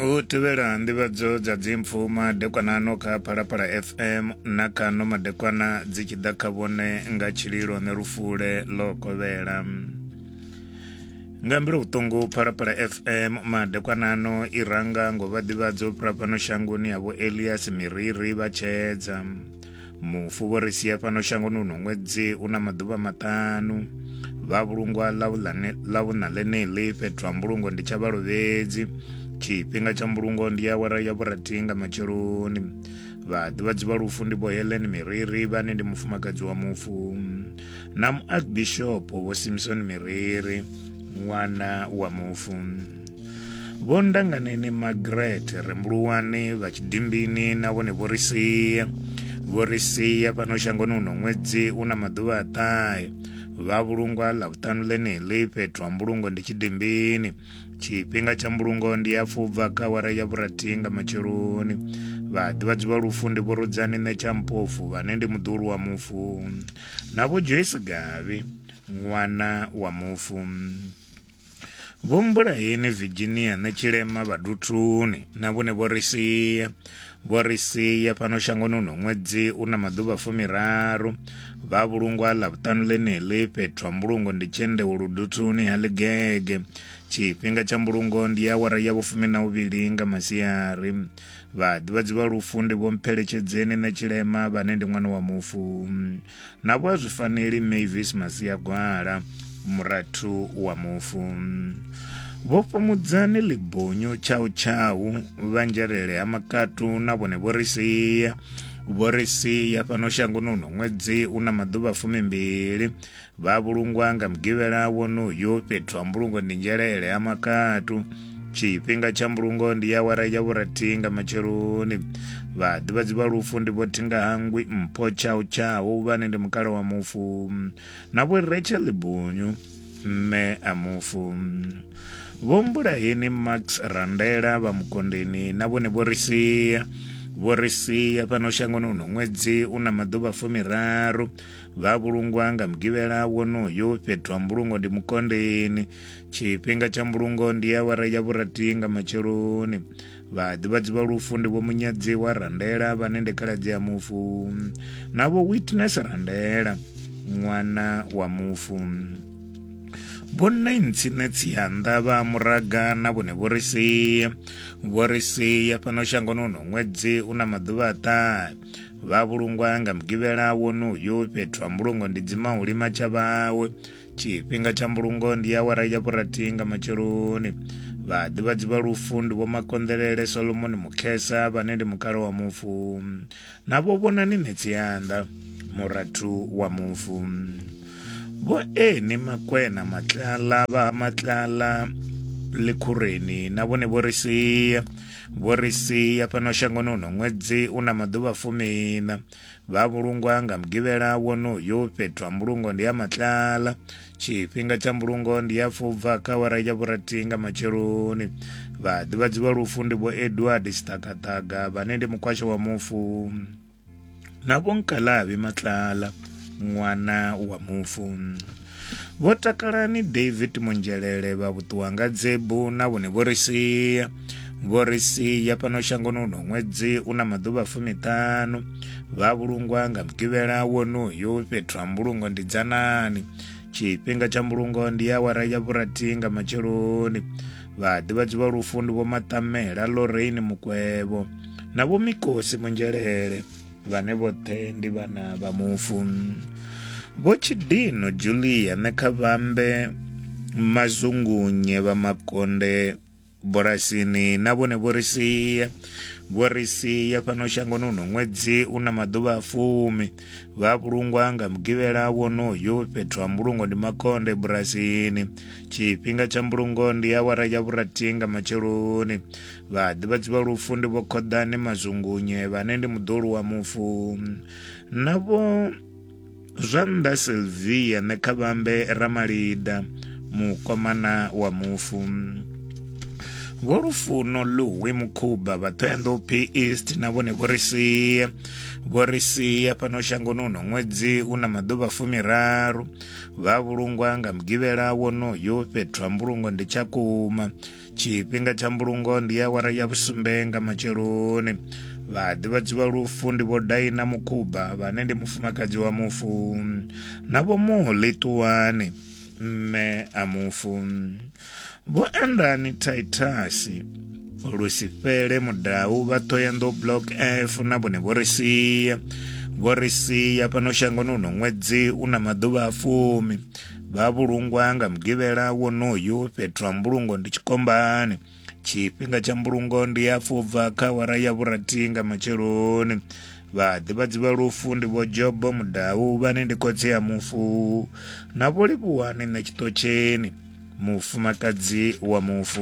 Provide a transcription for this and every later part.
u tevhela nḓivhadzo dza dzimpfu madekwanano kha phalaphala fm na kano madekwana dzi tshi ḓa kha vhone nga tshililo ne lufule ḽo kovhela nga mbilo vhuṱungu phalaphala fm madekwanano i ranga ngo vha ḓivhadzo fhira fhano shangoni ya vho elias miriri vha tshedza mufu vho ri sia fhano shangoni uno ṅwedzi u na maḓuvha maṱanu vha vhulungwa ḽa vhuṋa ḽeneḽi fhethu ha mbulungo ndi tsha vhalovhedzi tshifhinga tsha mbulungo ndi awara ya vhurathi nga matsheloni vhaḓivhadzi vha lufu ndi vho helen miriri vhane ndi mufumakadzi wa mufu na muarchbishop vho simson miriri ṅwana wa mufu vho ndanganeni magret rembuluwani vha tshidimbini na vhone vho ri sia vho ri sia fhano shangoni uno ṅwedzi u na maḓuvha a ṱahe vha vhulungwa ḽa vhuṱanu ḽeneḽi fhethu ha mbulungo ndi tshidimbini tshifhinga tsha mbulungo ndi ya fubva kha wara ya vhurathihi nga matsheloni vhaḓivhadzi vha lufu ndi vhurudzani nṋe tsha mpofu vhane ndi muḓulu wa mufu na vho joyce gavhi ṅwana wa mufu Vho Mbulayeni Virginia na Tshilema Vhaduthuni na vhone vho ri sia vho ri sia fhano shangoni uno ṅwedzi u na maḓuvha fumiraru vha vhulungwa ḽa vhuṱanu ḽeneḽi fhethu ha mbulungo ndi tshendewo luduthuni ha ḽigege tshifhinga tsha mbulungo ndi awara ya vhufumi na uvhili nga masiari vhaḓivhadzi vha lufu ndi vho mpheletshedzeni na tshilema vhane ndi ṅwana wa mufu navho a zwi faneli mavis masiagwala murathu wa mufu vho fhamudzani ḽibonyo tshau tshau vhanzhelele ha makatu na vhone vho ri sia vho ri sia fhano shangoni uno ṅwedzi u na maḓuvha fumimbili vha vhulungwa nga mugivhela wonoyo fhethu ha mbulungo ndi nzhelele ha makatu tshifhinga tsha mbulungo ndi ya wara ya vhurathi nga matsheloni vhaḓivhadzi vha lufu ndi vho thinga hangwi mpho tshau tshau vhane ndi mukala wa mufu na vho rachel bunyu mme a mufu vho mbulaheni max randela vha mukondeni na vhone vho ri sia vho ri sia fhano shangoni uno ṅwedzi u na maḓuvha fumiraru vha vhulungwa nga mugivhela wonoyo fhethu ha mbulungo ndi mukondeni tshifhinga tsha mbulungo ndi awara ya vhurathi nga matsheloni vhaḓivhadzi vha lufu ndi vho munyadziwa randela vhane ndi khaladzi ya mufu na vho witness randela ṅwana wa mufu vhonnaintsine tsianda vha muraga na vhone vho ri sia vho ri sia fhano shangoni uno ṅwedzi u na maḓuvha a ṱahe vha vhulungwa nga mugivhela wonoyo fhethu ha mbulungo ndi dzimahulima tsha vhawe tshifhinga tsha mbulungo ndi awara ya vhurathi nga matsheloni vhaḓivhadzi vha lufu ndi vho makonḓelele solomoni mukhesa vhane ndi mukalo wa mufu navho vhonani metsi yanda murathu wa mufu vho eni makwena matlala vha matlala likhureni na vhone vho ri sia vho ri sia fhano shangoni uno ṅwedzi u na maḓuvha fumina vha vhulungwa nga mugivhela wonoyo fhethu ha mbulungo ndi ha matlala tshifhinga tsha mbulungo ndi ya fubva kha wara ya vhurathi nga matsheloni vhaḓivhadzi vha lufu ndi vho edward siṱakaṱaga vhane ndi mukwasha wa mufu na vho nkalavi matlala ṅwana wa mufu Vho Takalani David Munzhelele vha vhuṱuwa nga dzebu na vhone vho ri sia vho ri sia fhano shangoni uno ṅwedzi u na maḓuvha fumiṱhanu vha vhulungwa nga mugivhela wonoyo fhethu ha mbulungo ndi dzanani tshifhinga tsha mbulungo ndi awara ya vhurathi nga matsheloni vhaḓivhadzi vha lufu ndi vho maṱamela lorraine mukwevho na vho mikosi munzhelele vhane vhoṱhe ndi vhana vha mufu vho tshidino julia ne kha vhambe mazungunye vha makonde bulasini na vhone vho ri sia vho ri sia fhano shangoni uno ṅwedzi u na maḓuvha a fumi vha vhulungwa nga mugivhela wonoyo fhethu ha mbulungo ndi makonde bulasini tshifhinga tsha mbulungo ndi awara ya vhurathi nga matsheloni Vhaḓivhadzi vha lufu ndi vho khoḓane mazungunye vhane ndi muḓolu wa mufu navho zwa nnḓa silvia nṋe kha vhambe ramalida mukomana wa mufu vho lufuno luwi mukhuba vha ṱhoyanḓou p east na vhone vho ri sia vho ri sia fhano shangoni uno ṅwedzi u na maḓuvha fumiraru vha vhulungwa nga mugivhela wonoyo fhethu ha mbulungo ndi tsha kuma tshifhinga tsha mbulungo ndi ya awara ya vhusumbe nga matsheloni vhaḓivhadzi vha lufu ndi vho daina mukhuba vhane ndi mufumakadzi wa mufu na vho muḽi ṱuwani mme a mufu vho andani taitasi lusifhele mudau vha thoyando block f na vhone vho ri sia vho ri sia fhano shangoni uno ṅwedzi u na maḓuvha a fumi vha vhulungwa nga mugivhela wonoyu fhethu ha mbulungo ndi tshikombani tshifhinga tsha mbulungo ndi ya fubva kha wara ya vhurathi nga matsheloni vhaḓivhadzi vha lufu ndi vho jobo mudau vhane ndi khotsi ya mufu na vho livhuwani na tshiṱotsheni mufumakadzi wa mufu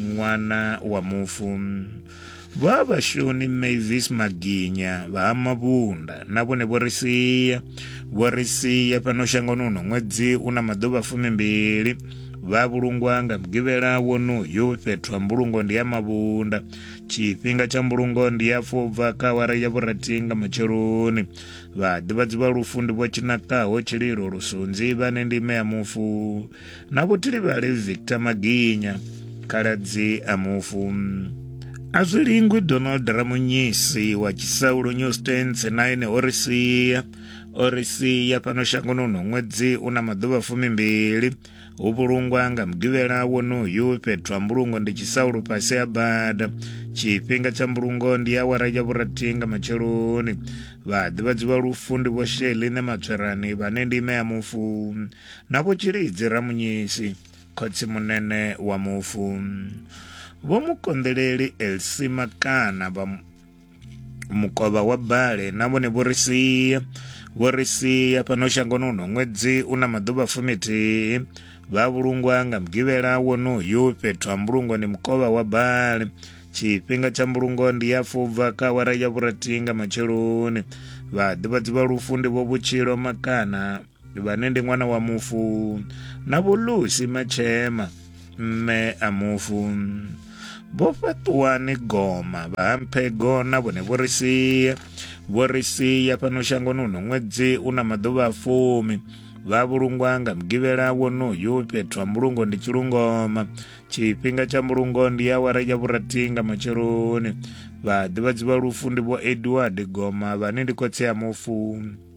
ṅwana wa mufu vha vhashoni mavis maginya vha ha mavhunda na vhone vho ri sia vho ri sia fhano shangoni uno ṅwedzi u na maḓuvha fumimbili vha vhulungwa nga mugivhela wonoyu fhethu ha mbulungo ndi ya mavhunda tshifhinga tsha mbulungo ndi ya fobva kha awara ya vhurathi nga matsheloni vhaḓivhadzi vha lufu ndi vho tshinakaho tshililo lusunzi vhane ndime ya mufu na vhutilivhali victor maginya khaladzi a mufu a zwi lingwi donald ramunyisi wa tshisaulo new stans na ene o ri sia o ri sia fhano shangoni uno ṅwedzi u na maḓuvha fumimbili hu vhulungwa nga mugivhela wonoyu fhethu ha mbulungo ndi tshisaulo fhasi ha bada tshifhinga tsha mbulungo ndi awara ya vhurathi nga matsheloni vhaḓivhadzi vha lufu ndi vho sheline matswerani vhane ndi ime ya mufu Na Vho Tshilidzi Ramunyisi, khotsimunene wa mufu. Vho Mukonḓeleli Elsima Kana vha mukovha wa Bale na vhone vho ri sia vho ri sia fhano shangoni uno ṅwedzi u na maḓuvha fumithihi vha vhulungwa nga mugivhela wonoyu fhethu ha mbulungo ndi mukovha wa bale tshifhinga tsha mbulungo ndi ya fubva kha awara ya vhurathi nga matsheloni vhaḓivhadzi vha lufu ndi vho vhutshilo makana vhane ndi ṅwana wa mufu na vhulusi matshema mme a mufu vho fhaṱuwani goma vha hamphego na vhone vho ri sia vho ri sia fhano shangoni uno ṅwedzi u na maḓuvha a fumi vha vhulungwa nga mugivhela wonoyu fhethu ha mbulungo ndi tshilungoma tshifhinga tsha mbulungo ndi awara ya vhurathi nga matsheloni vhaḓivhadzi vha lufu ndi vho edward goma vhane ndi khotsi ya mufu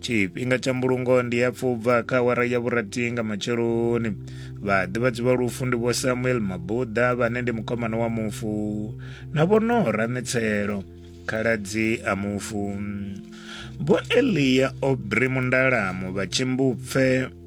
tshifhinga tsha mbulungo ndi ya pfubva kha awara ya vhurathi nga matsheloni vhaḓivhadzi vha lufu ndi vho samuel mabuḓa vhane ndi mukomana wa mufu na vho nora mitselo khaladzi a mufu vho eliya obri mundalamu vha tshimbupfe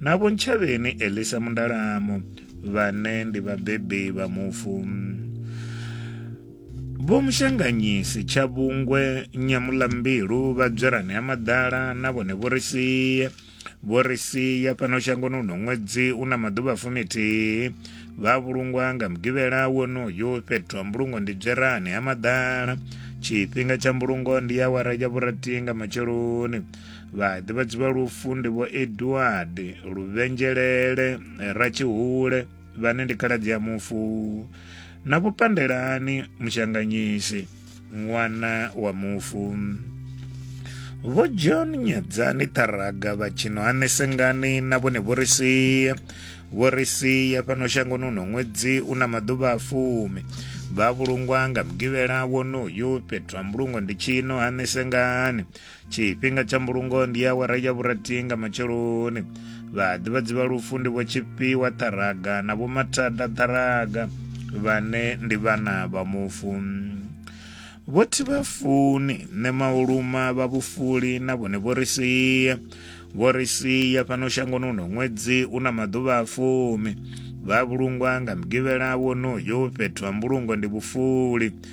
na Vho Ntshavheni Elisa Mundalamu vhane ndi vhabebi vha mufu. Vho Mushanganyisi Tshavhungwe Nyamulambilu vha Dzwerani ha Maḓala na vhone vho ri sia vho ri sia fhano shangoni uno ṅwedzi u na maḓuvha fumithihi vha vhulungwa nga mugivhela wonoyo fhethu ha mbulungo ndi dzwerani ha maḓala tshifhinga tsha mbulungo ndi awara ya vhurathi nga matsheloni vhaḓivhadzi vha lufu ndi vho edward luvhenzhelele ratshihule vhane ndi khaladzi ya mufu na vho pandelani mushanganyisi ṅwana wa mufu vho john nyadzani ṱharaga vha tshino hanesengani na vhone vho ri sia vho ri sia fhano shangoni uno ṅwedzi u na maḓuvha a fumi vha vhulungwa nga mugivhela wonoyu fhethu ha mbulungo ndi tshino hanesengani tshifhinga tsha mbulungo ndi awara ya vhurathi nga matsheloni vhaḓivhadzi vha lufu ndi vho tshifhiwa ṱharaga na vho mathada ṱharaga vhane ndi vhana vha mufu vho thi vha funi nṋe mauluma vha vhufuli na vhone vho ri sia vho ri sia fhano shangoni uno ṅwedzi u na maḓuvha a fumi vha vhulungwa nga mugivhela wonoyo fhethu ha mbulungo ndi vhufuli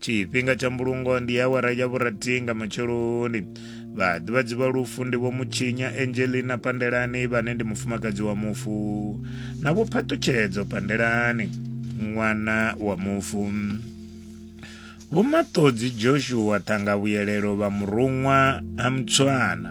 tshifhinga tsha mbulungo ndi awara ya vhurathi nga matsheloni vhaḓivhadzi vha lufu ndi vho mutshinya angelina pandelani vhane ndi mufumakadzi wa mufu na vho phaṱutshedzo pandelani ṅwana wa mufu vhomaṱodzi joshua ṱhangavhuyelelo vha muruṅwa ha mutswana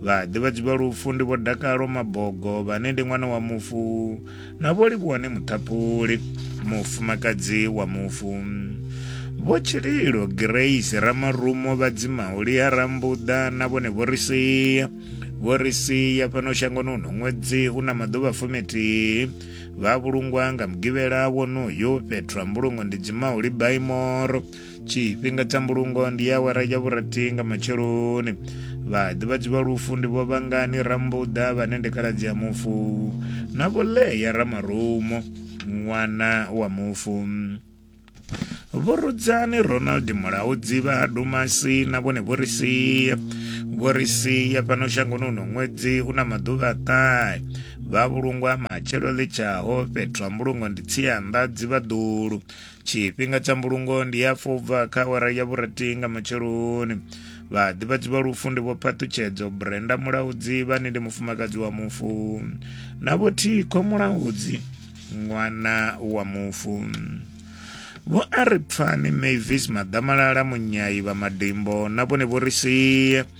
Vhaḓivhadzi vha lufu ndi Vho Dakalo Mabogo vhane ndi ṅwana wa mufu na Vho Livhuwane Muṱhaphuli mufumakadzi wa mufu. Vho Tshililo Grace Ramarumo vha dzimaho Lia Rambuḓa na vhone vho ri sia vho ri sia fhano shangoni uno ṅwedzi u na maḓuvha fumithihi vha vhulungwa nga mugivhela wonoyo fhethu ha mbulungo ndi dzimaho Libaimoro tshifhinga tsha mbulungo ndi ya awara ya vhurathi nga matsheloni vhaḓivhadzi vha lufu ndi vho vhangani rambuḓa vhane ndi khaladzi ya mufu na vho leya ramarumo ṅwana wa mufu vho rudzani ronald mulaho dzivha ha dumasi na vhone vho ri sia vho ri sia fhano shangoni uno ṅwedzi u na maḓuvha a ṱahe vha vhulungwa matshelo ḽitshaho fhethu ha mbulungo ndi tsianda dzivha ḓulu tshifhinga tsha mbulungo ndi ya pfa ubva kha awara ya vhurathi nga matsheloni vhaḓivhadzi vha lufu ndi vho phaṱutshedzo brenda mulaudzi vhane ndi mufumakadzi wa mufu na vho thikho mulaudzi ṅwana wa mufu vho a ri pfani mavis maḓamalala munyayi vha madimbo na vhone vho ri sie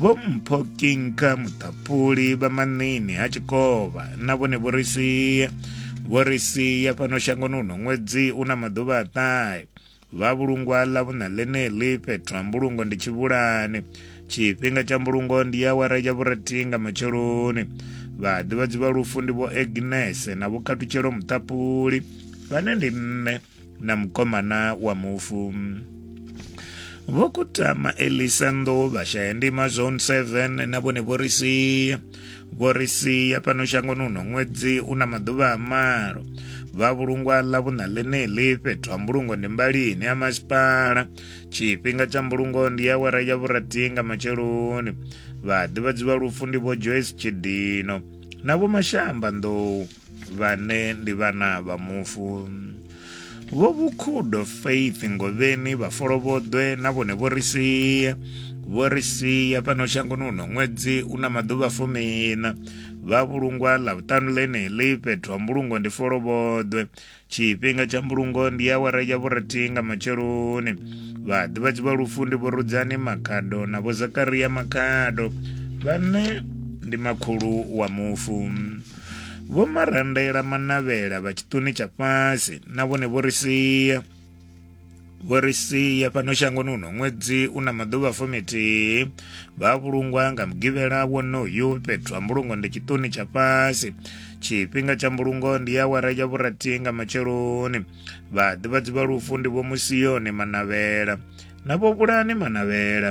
vho mpho kinka muṱapuli vha maṋini ha tshikovha na vhone vho ri sia vho ri sia fhano shangoni uno ṅwedzi u na maḓuvha a ṱahe vha vhulungwa ḽa vhuṋa ḽeneḽi fhethu ha mbulungo ndi tshivhulani tshifhinga tsha mbulungo ndi ya awara ya vhurathi nga matsheloni vhaḓivhadzi vha lufu ndi vho agnese na vhokhathutshelo muṱapuli vhane ndi nṋe na mukomana wa mufu vho kutama elisa nḓou vhashaya ndima zone 7 na vhone vho ri sia vho ri sia fhano shangoni uno ṅwedzi u na maḓuvha a malo vha vhulungwa ḽa vhuṋa ḽeneḽi fhethu ha mbulungo ndi mbalini ya masipala tshifhinga tsha mbulungo ndi awara ya vhurathi nga matsheloni vhaḓivhadzi vha lufu ndi vho joyce tshidino na vho mashamba nḓou vhane ndi vhana vha mufu vho vhukhudo faith ngovheni vhafolovhoḓwe na vhone vho ri sia vho ri sia fhano shangoni uno ṅwedzi u na maḓuvha fumina vha vhulungwa ḽa vhuṱanu ḽeneḽi fhethu ha mbulungo ndi folovhoḓwe tshifhinga tsha mbulungo ndi awara ya vhurathi nga matsheloni vhaḓivhadzi vha lufu ndi vhorudzani makhado na vho zakaria makhado vhane ndi makhulu wa mufu vho marandela manavhela vha tshiṱuni tsha fhasi na vhone vho ri sia vho ri sia fhano shangoni uno ṅwedzi u na maḓuvha fumithihi vha vhulungwa nga mugivhela wonoyu fhethu ha mbulungo ndi tshiṱuni tsha fhasi tshifhinga tsha mbulungo ndi awara ya vhurathi nga matsheloni vhaḓivhadzi vha lufu ndi vho musiyoni manavhela na vho vhulani manavhela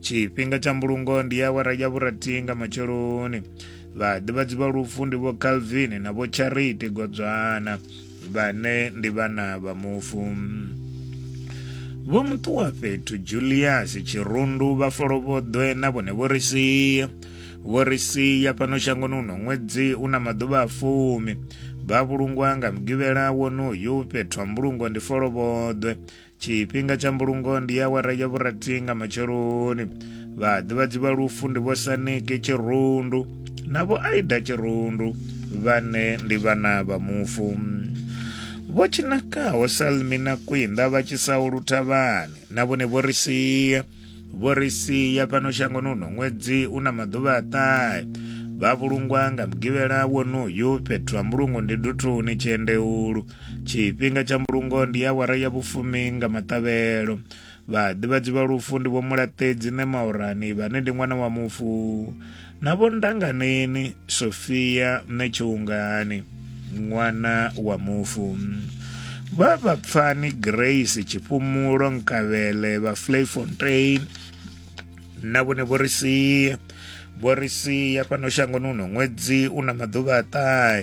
tshifhinga tsha mbulungo ndi awara ya vhurathi nga matsheloni vhaḓivhadzi vha lufu ndi vho calvin na vho charity godzwana vhane ndi vhana vha mufu vho muṱuwa fhethu julius tshirundu vha folovhoḓwe na vhone vho ri sia vho ri sia fhano shangoni uno ṅwedzi u na maḓuvha a fumi vha vhulungwa nga mugivhela wonoyu fhethu ha mbulungo ndi folovhoḓwe tshifhinga tsha mbulungo ndi ya awara ya vhurathi nga matsheloni vhaḓivhadzi vha lufu ndi vho saniki tshirundu na vho aida tshirundu vhane ndi vhana vha mufu vho tshinakaho salmi na kwinda vha tshisaho luthavhani na vhone vho ri sia vho ri sia fhano shangoni uno ṅwedzi u na maḓuvha a ṱahe vha vhulungwa nga mugivhela wonoyu fhethu ha mbulungo ndi duthuni tshiendeulu tshifhinga tsha mbulungo ndi ya wara ya vhufumi nga maṱavhelo vhaḓivhadzi vha lufu ndi vho mulaṱedzi ne maorani vhane ndi ṅwana wa mufu na vho ndanganeni sofia nṋe tshiungani ṅwana wa mufu vha vha pfani grace tshifhumulo nkavhele vha flayfontein na vhone vho ri sia vho ri sia fhano shangoni uno ṅwedzi u na maḓuvha a ṱahe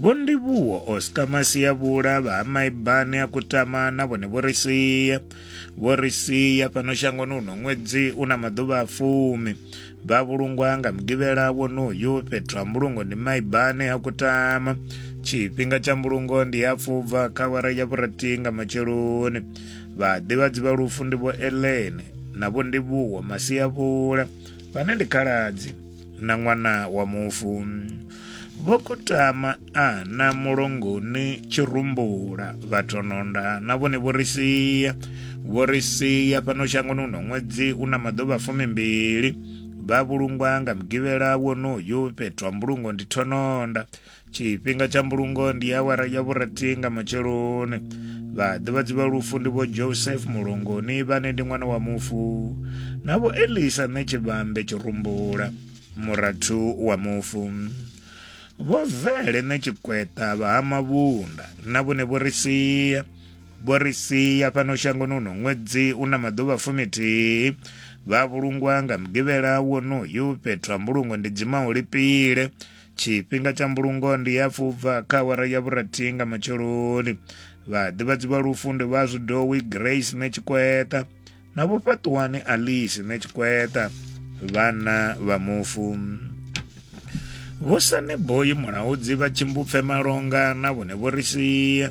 Vho Ndivhuwo Oscar Masiavhula vha ha Maibane a Kutama na vhone vho ri sia vho ri sia fhano shangoni uno ṅwedzi u na maḓuvha a fumi vha vhulungwa nga mugivhela wonoyu fhethu ha mbulungo ndi Maibane a Kutama tshifhinga tsha mbulungo ndi ya fubva kha awara ya vhurathi nga matsheloni vhaḓivhadzi vha lufu ndi vho Ellen na vho Ndivhuwo Masiavhula vhane ndi khaladzi na ṅwana wa mufu vho kutama ana mulongoni tshirumbula vhathononda na vhone vho ri sia vho ri sia fhano shangoni uno ṅwedzi u na maḓuvha fumimbili vha vhulungwa nga mugivhela wonoyu fhethu ha mbulungo ndi thononda tshifhinga tsha mbulungo ndi awara ya vhurathi nga matsheloni vhaḓivhadzi vha lufu ndi vho joseph mulongoni vhane ndi ṅwana wa mufu na vho elisa ṋe tshivhambe tshirumbula murathu wa mufu vho vele ṋe tshikweta vha ha mavhunda na vhone vho ri sia vho ri sia fhano shangoni uno ṅwedzi u na maḓuvha fumithihi vha vhulungwa nga mugivhela wonoyu fhethu ha mbulungo ndi dzima u lipile tshifhinga tsha mbulungo ndi ya fubva kha awara ya vhurathi nga matsheloni vhaḓivhadzi vha lufu ndi vha zwidowi grace ne tshikweta na vhofhaṱuwani alice ne tshikweta vhana vha mufu vho saneboyi mulaudzi vha tshimbupfe malonga na vhone vho ri sia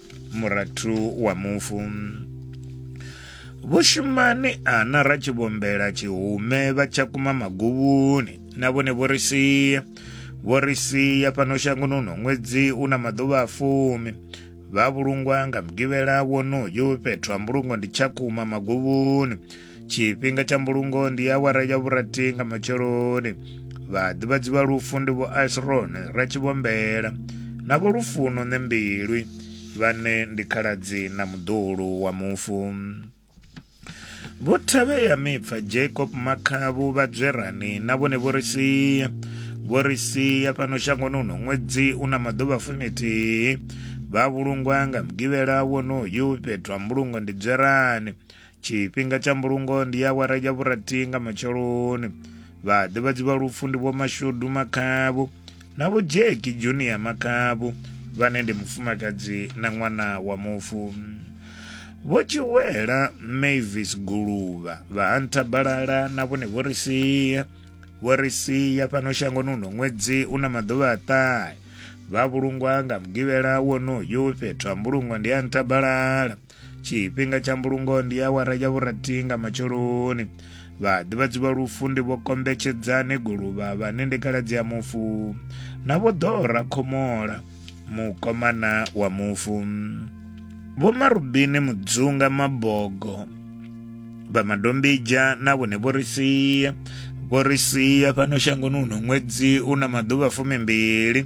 murathu wa mufu vhushumani ana ra tshi vhombela tshihume vha tsha kuma maguvhuni na vhone vho ri sia vho ri sia fhano shangoni uno ṅwedzi u na maḓuvha a fumi vha vhulungwa nga mugivhela wonoyu fhethu ha mbulungo ndi tsha kuma maguvhuni tshifhinga tsha mbulungo ndi awara ya vhurathi nga matsheloni vhaḓivhadzi vha lufu ndi vho asrone ratshivhombela na vho lufuno ne mbilwi vhane ndi khaladzi na muḓulu wa mufu vho thavhea mipfa jacob makhavhu vhadzwerani na vhone vho ri sia vho ri sia fhano shangoni uno ṅwedzi u na maḓuvha fumithihi vha vhulungwa nga mugivhela wonoyu fhethu ha mbulungo ndi dzwerani tshifhinga tsha mbulungo ndi awara ya vhurathi nga matsheloni vhaḓivhadzi vha lufu ndi vhomashudu makhavhu na vho jeki junior makhavhu vhane ndi mufumakadzi na ṅwana wa mufu vho tshiwela mavis guluvha vha hanta balala na vhone vho ri sia vho ri sia fhano shangoni uno ṅwedzi u na maḓuvha a ṱahe vha vhulungwa nga mugivhela wonoyu fhethu ha mbulungo ndi a ntabalala tshifhinga tsha mbulungo ndi awara ya vhurathi nga matsheloni vhaḓivhadzi vha lufu ndi vho kombetshedzane guluvha vhane ndi khaladzi ya mufu na vho ḓora khomola mukomana wa mufu vho marubini mudzunga mabogo vha madombija na vhone vho ri sia vho ri sia fhano shangoni uno ṅwedzi u na maḓuvha fumimbili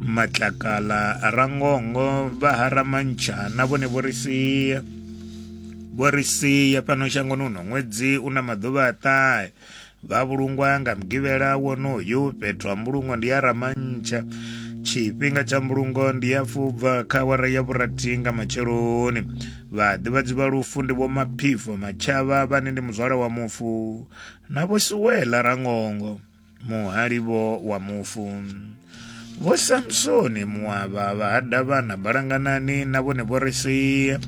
matlakala rangongo vha haramantsha na vhone vho ri sia vho ri sia fhano shangoni uno ṅwedzi u na maḓuvha a ṱahe vha vhulungwa nga mugivhela wonoyu fhethu ha mbulungo ndi ya ramantsha tshifhinga tsha mbulungo ndi ya fubva kha awara ya vhurathi nga matsheloni vhaḓivhadzi vha lufu ndi vho maphifo matshava vhane ndi muzwala wa mufu na vho suwela rangongo muhalivho wa mufu vho samsoni muavha vha hada vhana balanganani na vhone vho ri sia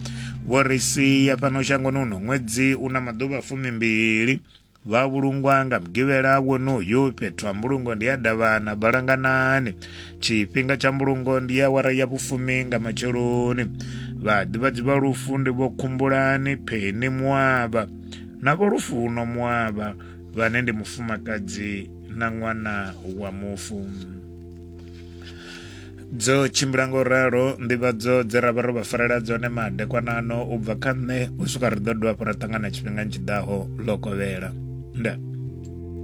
vho ri sia fhano shangoni uno ṅwedzi u na maḓuvha fumimbili vha vhulungwa nga mugivhela wonoyu fhethu ha mbulungo ndi ya davhana balanganani tshifhinga tsha mbulungo ndi ya wara ya vhufumi nga matsheloni vhaḓivhadzi vha lufu ndi vho khumbulani pheni muavha na vho lufuno muavha vhane ndi mufumakadzi na ṅwana wa mufu dzo tshimbila ngo ralo nḓivhadzo dze ra vha ro vha farela dzone madekwanano u bva kha nṋe u swika ri ḓo dovha hafhu ra ṱangana tshifhingani tshiḓaho ḽo kovhela nda